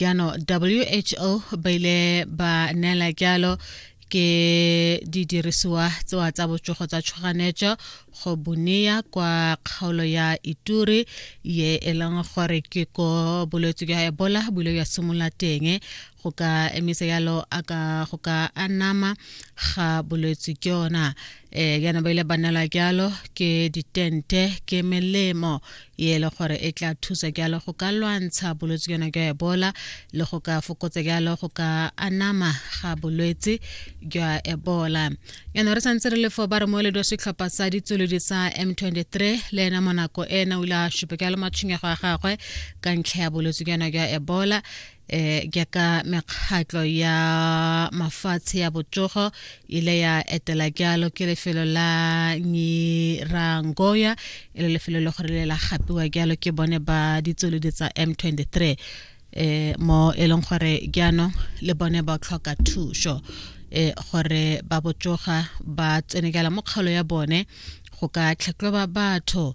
jaanong who ba ile ba neela jalo ke didirisiwa tsewa tsa botsogo tsa tshoganetso go boneya kwa kgaolo ya ituri ye e leng gore ke ko bolwetse jwa ebola bule ya simolola teng go ka emisa yalo a ka go ka anama ga bolwetse ke yona um yana ba ile ba nela jalo ke ditente ke melemo e ele gore e tla thusa jalo go ka lwantsha bolwetse jona jwa ebola le go ka fokotsa jalo go ka anama ga bolwetse jwa ebola jaanong re santse re le fo ba re moeledi wa setlhopha sa ditsolodi sa m23 le ena mo nako ena o ile a supa jalo matshwenyego a gagwe ka ntlha ya bolwetse jona jwa ebola eh jaaka mekgatlo ya mafatshe ya botsogo ile ya etela jalo ke lefelo la nyirangoya e le lefelo le gore le la gapiwa jalo ke bone ba ditsolodi tsa m 23 eh mo e leng gore jaanong le bone ba tlhoka thuso eh gore ba botsoga ba tsenekela mo kgaolo ya bone go ka tlhatlhoba batho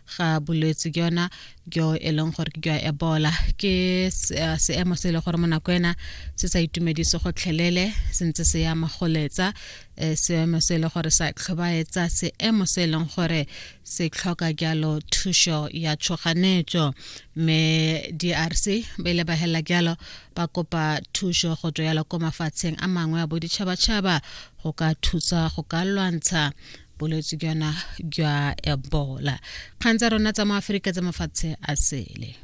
ga bolwetse ke yona jo e leng gore ke jwa ebola ke eh, seemo se e le gore mo nako ena se sa itumedise gotlhelele se ntse se ya magoletsa eh, seemo se e le gore sa tlhobaetsa seemo se e leng gore se tlhoka jalo thušo ya tshoganetso mme drc ba ile ba helela jalo ba kopa thušo go tswa jalo ko mafatsheng a mangwe a boditšhabatšhaba go ka thusa go ka lwantsha bolwetse jona jwa ebola kgang tsa rona tsa mo aforika tsa mafatshe a sele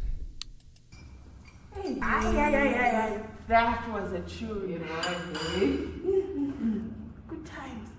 That was a chew, it was, eh? Good times.